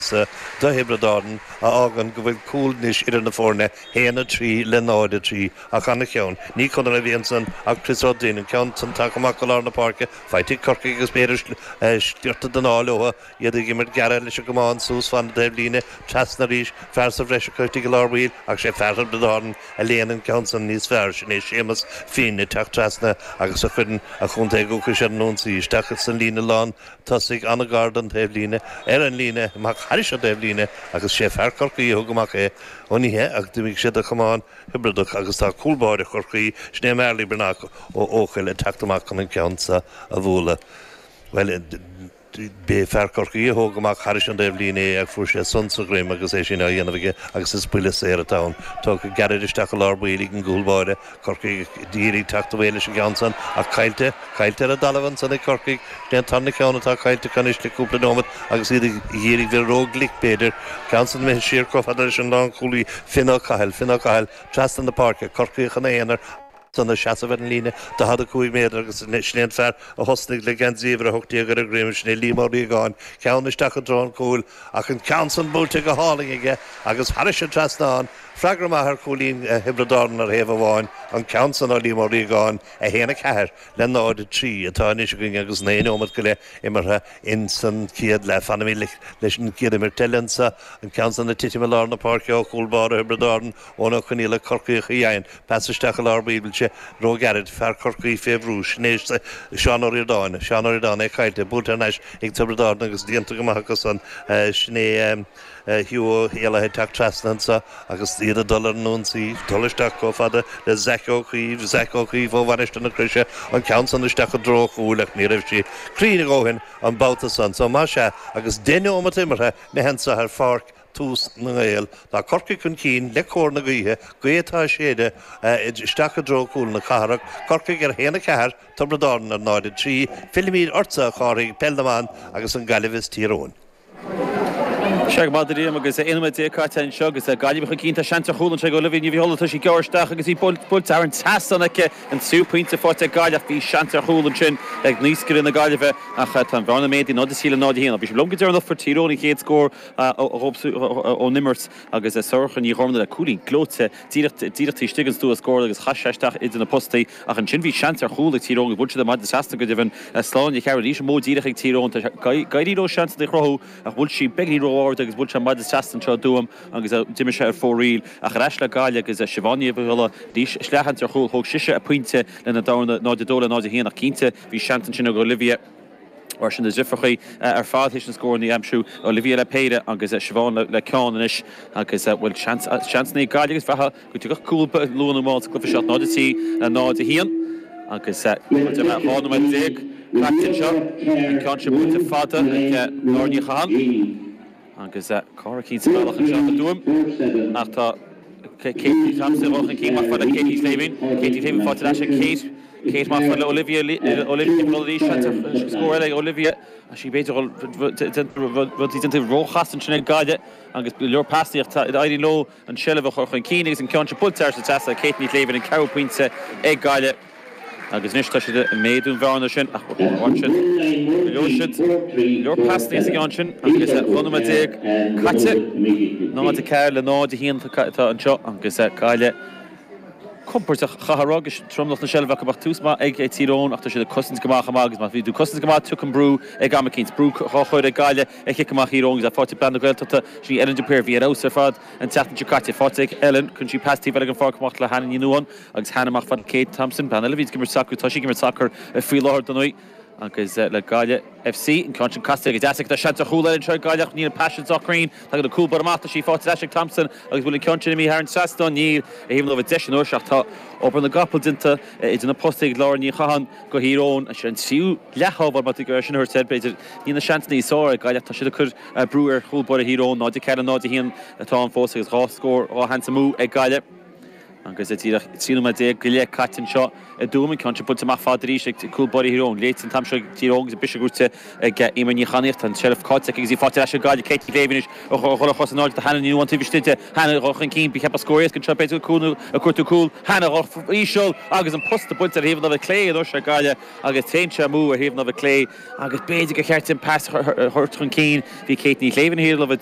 sa do Thiobraid Árann a fhágann go bhfuil cúl anois idir na foirne, 1, 3 le 0, 3, ach ana-cheann. Ní Conor a bhí ansan ach Chris Ruddy. An ceann san tagtha amach go lár na páirce, faighte ag Corcaigh agus b'fhéidir sciorta den ádh leotha, iad ag imirt gearra leis an gcamán, suas fan na taobhlíne, trasna arís, fear sa bhreis acu istigh i lár baill, ach sé fear Thiobraid Árann a léann an ceann san níos fearr, sin é Séamus Finn ag teacht trasna agus a chuireann a chontae dhúchais ar an ionsaí, isteach san líne lán. tosaigh ana-ghairid don taobh líne, ar an líne amach thairis an taobh líne agus sé fear Corcaí a thug amach é ó ní hea ach d'imigh sé de chamán Thiobradach agus tá cúl báire Chorcaí, sin é Marley Breathnach ó Eochaill ag teacht amach chun an ceann seo a bhualadh. Bhuel, b'é fear Corcaí a thug amach thairis an taobh líne é ach fuair sé sonc sa dhroim agus é sin á dhéanamh aige agus is buille saor atá ann. Tugtha gairid isteach i lár baill ag an gcúl báire, Corcaigh ag iarraidh teacht away leis an gceann san ach caillte, caillte ar an dtalamh ansan ag Corcaigh. Sin é an tarna ceann atá caillte acu anois le cúpla nóimeat agus iad ag iarraidh bheith ró glic b'fhéidir. Ceann san imithe siar chomh fada leis an lán chúlaí Finn Ó Cathail, Finn Ó Cathail trasna na páirce, Corcaíoch ina aonar ansan ag seasamh ar an líne 45 méadar agus sin é an fear a thosnaigh le geansaí uimhir 18 ar a dhroim, sin é Liam Ó Riagáin. Ceann isteach i dtreo an chúil ach an ceann san buailte go hálainn aige agus thairis an trasnán. Freagra maith ar chúilín Thiobraid Árann ar thaobh amháin, an ceann san ó Liam Ó Riagáin, 1, 4 le 0, 3, atá anois againn agus naoi nóimeat go leith imeartha ins an chéad leath. Fanfaimid leis an gcéad imirt eile anso, an ceann san ag titim i lár na páirce ó chúl báire Thiobraid Árann, Eoin Ó Conghaile, Corcaíoch a dhein pas isteach i lár baill buailte ró-ghairid, fear Corcaí fé bhrú sin é Seán Ó Ríordáin, Seán Ó Ríordáin é caillte, buailte thar n-ais ag Tiobraid Árann agus déanta go maith acu san, sin é. Hugh Ó hÉalaithe ag teacht trasna anseo agus iad ag dul ar an ionsaí. Dul isteach chomh fada le Zach Ó Caoimh. Zach Ó Caoimh ó Mhainistir na Croise. An ceann san isteach i dtreo chúil ach ní raibh sí cruinn a dhóthain an babhta san. So más ea, agus deich nóimeat imeartha againn anseo ar pháirc TUS na nGael, tá Corcaigh chun cinn le cóir na gaoithe. Gaoth atá ag séideadh isteach i dtreo chúl na cathrach. Corcaigh ar 1, 4, Tiobraid Árann ar 0, 3. Fillimid ortsa a Chárthaigh, Peil na mBan agus an Gaillimh is Tír Eoghain. Sea go raibh maith agat a Liam agus 11 nóiméad caite anseo agus Gaillimh chun cinn. Tá seans ar chúl anseo ag Olivia Ní Dhuibhghiolla, tá sí ag gearradh isteach agus bhí buailte thar an trasnán aici. An tríú pointe faighte ag Gaillimh ach bhí seans ar chúl ansin ag naoscaire na Gaillimhe ach tá an bhearna méadaithe 0-3 le 0-1. Ó bhí sibh liom go deireanach fuair Tír Eoghain an chéad scór ón imirt agus Sorcha Ní Ghormáin le cúilín gleoite. díreach taobh istigh den stua os comhair an chúil agus chaith sé isteach idir na postaí ach ansin bhí seans ar chúl ag Tír Eoghain agus bhuail siad an maide trasna. Go deimhin Sláine Nic Cearbhaill arís an modh díreach ag Tír Eoghain tá ag éirí leo seansanna a chruthú ach bhuail sí í beagáinín ró-ard agus bhuail sé an maide trasna anseo i dTuaim agus d'imigh sé ar fóraoil. Ach ar ais le Gaillimh agus Siobhán Ní Dhuibhghiolla arís leathsheans ar chúl. Thóg sise a pointe lena dhéanamh 0-2 le 0-1 ach cinnte bhí seans ansin ag Olivia Mar sin, is na difríochtaí ar fad thuas na scóranna aimsithe Olivia le péire agus Siobhán le ceann anois agus bhuel, seans ag Gaillimh is ea go dtiocfadh cúl luath nó mall sa gcluiche seo, 0 3, 0 1 agus díreach 12 nóiméad caite anseo. An ceann sin buailte fada ag Máire Ní Chatháin. Agus Cora Keane sa bhealach anseo i dTuaim ach tá Kate Thompson, Kate amach fad le Katie Slevin. Katie Slevin faighte ar ais ag Kate. Kate amach fad le Olivia Olivia ag dul arís anseo. Scór eile ag Olivia. Tá sé b'fhéidir go bhfuil rudaí déanta ró-chasta ansin ag Gaillimh agus go leor pasanna ach tá ag éirí leo. an tseilbh a chur chun cinn agus an ceann seo buailte thar an trasnán ag Kate Ní Shléibhín, an ceathrú pointe ag Gaillimh agus anois tá siad ag méadú an bhearna sin ach ba chóir dóibh ansin go leor siad go leor pasanna sa gceann sin agus 12 nóiméad caite, 0, 4 le 0, 1 atá anseo agus Gaillimh compordach chaithfeá rá agus tromlach na seilbhe acu ach tús maith ag Tír Eoghain ach tá siad ag cosaint go maith chomh maith agus má bhíonn tú ag cosaint go maith tiocfaidh an brú ag am eicínt. Brú dhá chur ag Gaillimh. An cic amach í Rawings le fáil i bPeil na Gaeltachta. Sin í Ellen de Paor a bhí ar fheabhas ar fad an tseachtain seo caite. Faighte ag Ellen. Cuireann sí pas taobh amuigh den pháirc amach le Hannah Ní Nuadháin agus Hannah amach fad le Kate Thompson, bean eile a bhí ag imirt sacair. Tá sí ag imirt sacair faoi láthair do Naomh agus le Gaillimh FC. An ceann sin casta go deas aici. Tá seans ar chúl eile anseo ag Gaillimh ach níl an pas sin sách cruinn. Tagann an cúl báire amach. Tá sí faighte ar ais ag Thompson agus bhfuil an ceann sin imithe thar an trasnán? Níl. A haoibhinn dóibh an deis anois ach tá obair na gcapall déanta idir na postaí ag Lauren Ní Chatháin. Tír Eoghain, sin an tríú leathsheans mar sin a thabhairt air. B'fhéidir níl aon seans níos fearr ag Gaillimh ach tá siad ag cur brú ar chúl báire Thír Eoghain. 0-4, 0-1 atá ann fós agus dhá scór, dhá sheans amú ag Gaillimh agus díreach 13 nóiméad go leith caite anseo i dTuaim. An ceann sin buailte amach fad arís ag cúl báire Thír Eoghain. Léite an t-am seo ag Tír Eoghain agus briseadh buaite ag Eimear Ní Chanaíoch. Tá an seilbh caillte aici agus í faighte ar ais ag Gaillimh. Katie Davey anois a chuir a chos in airde do Hannah Ní Nuadháin taobh istigh di. Hannah chun cinn. Ba cheart go mbeadh scór éasca anseo b'fhéidir go cuirtear cúl. Hannah íseal agus an post buailte ar thaobh na láimhe clé anois ag Gaillimh. agus téann sé amú ar thaobh na láimhe clé agus b'fhéidir gur cheart di an pas a thabhairt chun cinn. Bhí Kate Ní Shléibhín thiar leo bheith